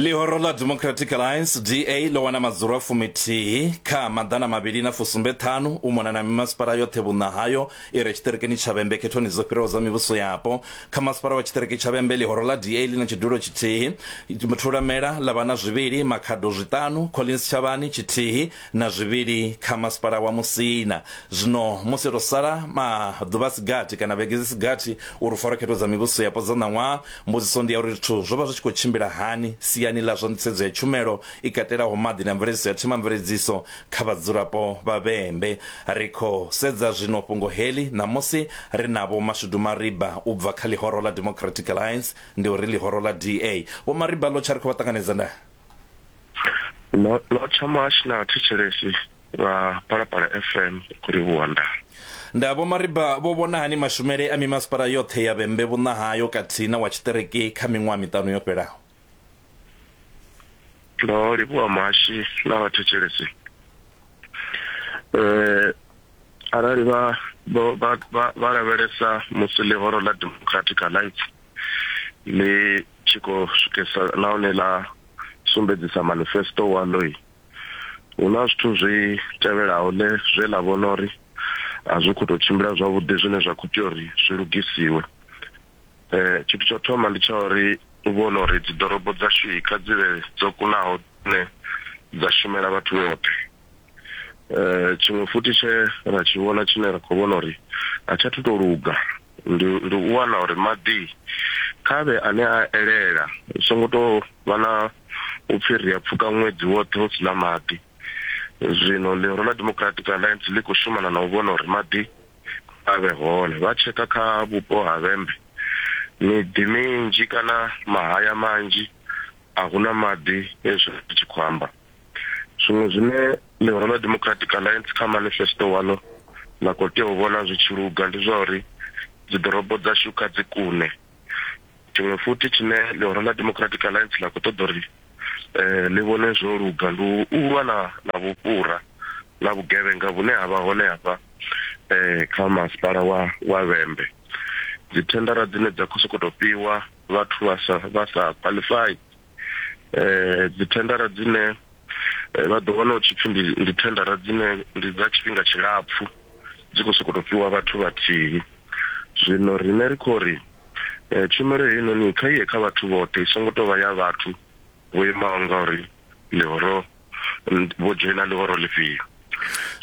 ḽihoro ḽa democratic alliance da ḽo wana madzula fumithihi kha maḓana mavhili na fusumbe ṱhanu u mona na mimasipala yoṱhe vhunna hayo i re tshiṱirikini tsha vhembe khethoni dzo fhiraho dza mivhuso yapo kha masipala wa tshiṱiriki tsha vhembe ḽihoro ḽa da ḽi na tshidulo tshithihi thulamela ḽa vha na zwivhili makhado zwiṱanu collins tshavhani tshithihi na zwivhili kha Masipala wa Musina. Zwino musi ro sala maḓuvha a si gathi kana vhege dzi si gathi uri Pfarokhetho dza Mivhuso Yapo dza ṋaṅwaha, mbudziso ndi ya uri zwithu zwo vha zwi tshi khou tshimbila hani siani ḽa zwa nḓisedzo ya tshumelo i katelaho maḓi na mveledziso ya themamveledziso kha vhadzulapo vha Vhembe. Ri khou sedza zwino fhungo heḽi ṋamusi ri na Vho Mashudu Mariba u bva kha ḽihoro ḽa Democratic Alliance, ndi uri ḽihoro ḽa DA. Vho Mariba, ḽo tsha ri khou vha ṱanganedza nda. lotsha mash na thetshelesi vha palapala fm kuri vhuwanda nda vho mariba vho vhona hani mashumele a mimasipala yoṱhe ya vhembe vhunna hayo khathihi na wa tshiṱereke kha miṅwaha miṱanu yo fhelaho ndo livhuwa mashi na vhathetshelesi um arali vha vha lavhelesa musi ḽihoro ḽa democratic alliance ḽi tshi khou swikisa nahone ḽa sumbedzisa manifesto waḽo hu na zwithu zwi tevhelaho ḽe zwe ḽa vhona uri a zwi khou tou tshimbila zwavhuḓi zwine zwa khou tea uri zwi lugisiwe um tshithu tsho thoma ndi tsha uri u vhona uri dziḓorobo dzashu kha dzi vhe dzo kunaho dzine dza shumela vhathu vhoṱhe eh tshiṅwe futhi tshe ra tshi vhona tshine ra khou vhona uri a tsha thuto luga ndi ndi u wana uri maḓi khavhe ane a elela u songo to vha na u pfhi ri a pfuka ṅwedzi woṱhe hu sina maḓi zwino ḽihoro ḽa democratic alliance ḽi khou shumana na u vhona uri maḓi a vhe hone vha tsheka kha vhupo ha vhembe miḓi minzhi kana mahaya manzhi a huna maḓi ezwi tshi khou amba zwiṅwe zwine ḽihoro ḽa democratic alliance kha manifesto walo ḽa khou tea u vhona zwi tshi luga ndi zwa uri dziḓorobo dzashu kha dzi kune tshiṅwe futhi tshine ḽihoro ḽa democratic alliance ḽa khou ṱoḓa uri um ḽi vhone zwo luga ndi u lwa na na vhufhura na vhugevhenga vhune ha vha hone hafha um kha masipala wa wa vhembe dzithendara dzine dza khou sokou tou fhiwa vhathu vha sa vha sa qualify eh dzi tendara dzine eh, vha ḓo wana u tshipfi ndi ndi tendara dzine ndi dza tshifhinga tshilapfu dzi khou sokoto fhiwa vhathu vhathihi zwino rine ri khou ri eh, tshumelo heinoni kha iye kha vhathu vhoṱhe i songo tou vha ya vhathu vho imaho ngauri ḽihoro n- vho dzhoina ḽihoro ḽifhio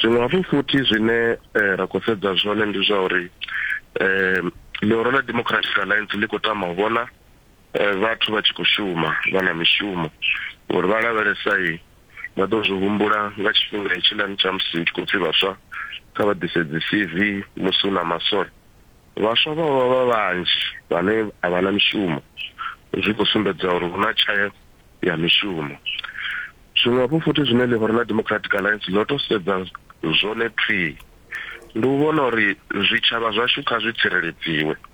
zwiṅwe hafhu futhi zwine eh, ra khou sedza zwone ndi zwa uri um ḽihoro ḽa democratic alliance ḽi khou tama u vhona Vhathu vha tshi khou shuma vha na mishumo uri vha lavhelesai vha ḓo zwi humbula nga tshifhinga hetshiḽani tsha musi hu tshi khou pfi vhaswa kha vha ḓise dzi CV musi hu na maswole. Vhaswa vha vha vha vhanzhi vhane a vha na mishumo zwi khou sumbedza uri hu na tshayo ya mishumo. Zwiṅwe hafhu futhi zwine Liberala Democratic Alliance ḽo tou sedza zwone thwii ndi u vhona uri zwitshavha zwashu kha zwi tsireledziwe.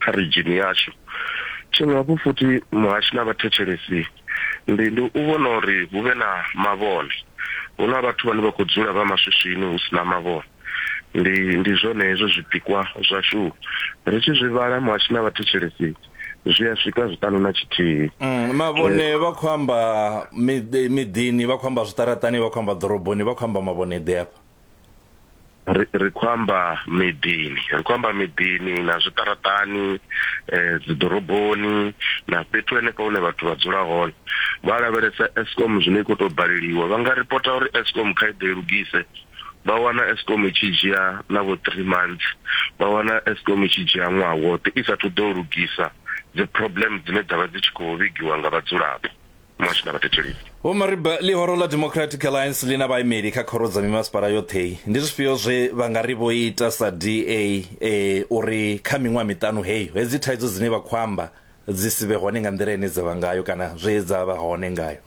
kha ridzhini yashu. Tshiṅwe hafhu futhi muhashi na vhathetshelesi ndi ndi u vhona uri hu vhe na mavhone. Hu na vhathu vhane vha khou dzula vha maswiswini hu si na mavhone. Ndi ndi zwone hezwo zwipikwa zwashu. Ri tshi zwi vhala muhashi na vhathetshelesi zwi a swika zwiṱanu na tshithihi. Mavhone vha khou amba miḓini, vha khou amba zwiṱaraṱani, vha khou amba ḓoroboni, vha khou amba mavhone ḓe afha? ri ri khou amba miḓini ri khou amba miḓini na zwiṱaraṱani um dziḓoroboni na fhethu henefho hune vhathu vha dzula hone vha lavhelesa escom zwine i khou tou baleliwa vha nga ripota uri escom kha i ḓe i lugise vha wana escom i tshi dzhia na vho three months vha wana escom i tshi dzhia ṅwaha woṱhe i sathu ḓo lugisa dzi problem dzine dzavha dzi tshi khou vhigiwa nga vhadzulapo muhasho na vhathetshelesi. Vho Mariba, Ḽihoro ḽa Democratic Alliance ḽi na vhaimeli kha khoro dza mimasipala yoṱhe. Ndi zwifhio zwe vha nga ri vho ita sa DA e, uri kha miṅwaha miṱanu heyo hedzi thaidzo dzine vha khou amba dzi si vhe hone nga nḓila ine dza vha ngayo kana zwe dza vha hone ngayo?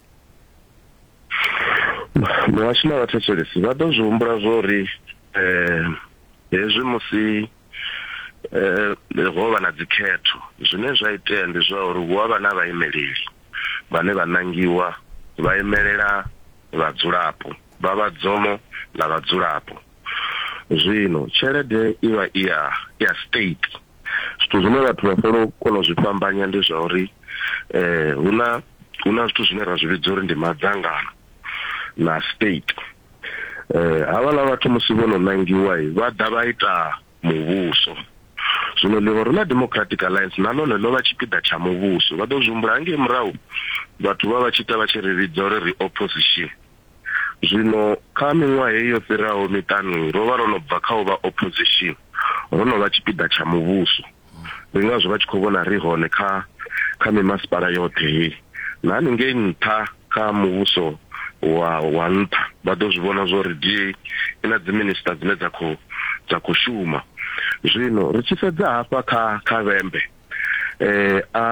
Muhasho na vhathetshelesi vha ḓo zwi humbula zwo ri hezwi musi. eh, ho vha na dzikhetho zwine zwa itea ndi zwa uri hu avha na vhaimeleli vhane vha nangiwa vha imelela vhadzulapo vha vhadzomo na vhadzulapo zwino tshelede i vha i ya ya state zwithu zwine vhathu vha fela kona u zwi fhambanya ndi zwa uri eh huna huna zwithu zwine ra zwi vhidza uri ndi madzangano na state eh havhala vhathu musi vho no nangiwa vha ḓa vha ita muvhuso zwino ḽihoro ḽa democratic alliance na ḽone ḽo vha tshipiḓa tsha muvhuso vha ḓo zwi humbula hangei murahu vhathu vha vha tshi ita vha tshi ri vhidza uri ri opposition zwino kha miṅwaha heyi yo fhiraho miṱanu ro vha ro no bva kha u vha opposition ro no vha tshipiḓa tsha muvhuso ndi ngazwo vha tshi khou vhona ri hone kha kha mimasipala yoṱhe hei na haningei nṱha kha muvhuso wa wa nṱha vha ḓo zwi vhona zwo ri DA i na dziminista dzine dza khou dza khou shuma zwino ri tshi sedza hafha kha kha vhembe eh a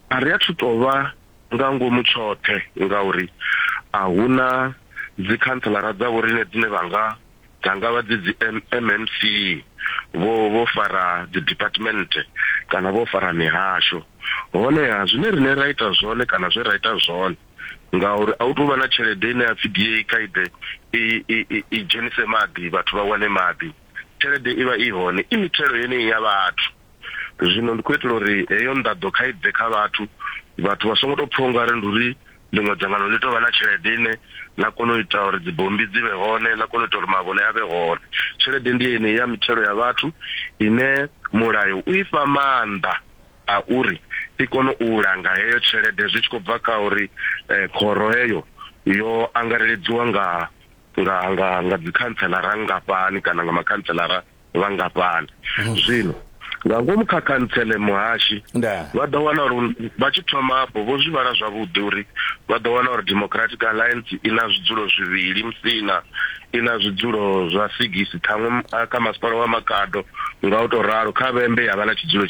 a ri athu tovha nga ngomu tshoṱhe ngauri a huna dzi councilor dza vhorine dzine vha nga dza nga vha dzi dzi MMC vho vho fara dzi department kana vho fara mihasho honeha zwine rine ra ita zwone kana zwe ra ita zwone ngauri a u tou vha na tshelede ine ya pfhi DA kha ide i i i dzhenise maḓi vhathu vha wane maḓi tshelede i vha i hone i mithelo yeneyi ya vhathu zwino ndi khou itela uri heyo nḓaḓo kha i bve kha vhathu vhathu vha songo tou pfha ungari ndi uri ḽiṅwe dzangano ḽi tovha na tshelede ine ḽa kona u ita uri dzibombi dzi vhe hone ḽa kona u ita uri mavhone a vhe hone tshelede ndi yeneyi ya mithelo ya vhathu ine mulayo u i fha maanḓa a uri i kone u langa heyo tshelede zwi tshi khou bva kha uri eh, khoro heyo yo angareledziwa nga nga nga nga dzikhanselara nngafhani kana nga makhantselara vhangafhani hmm. zwino nga ngomu kha khantsele muhashi vha ḓo wana uri vha tshi thoma afho vho zwi vhala zwavhuḓi uri vha ḓo wana uri democratic alliance i na zwidzulo zwivhili musina i na zwidzulo zwa sigisi ṱhaṅwe kha masipala wa makado nga u tou ralo kha vhembe ya vha na tshidzulo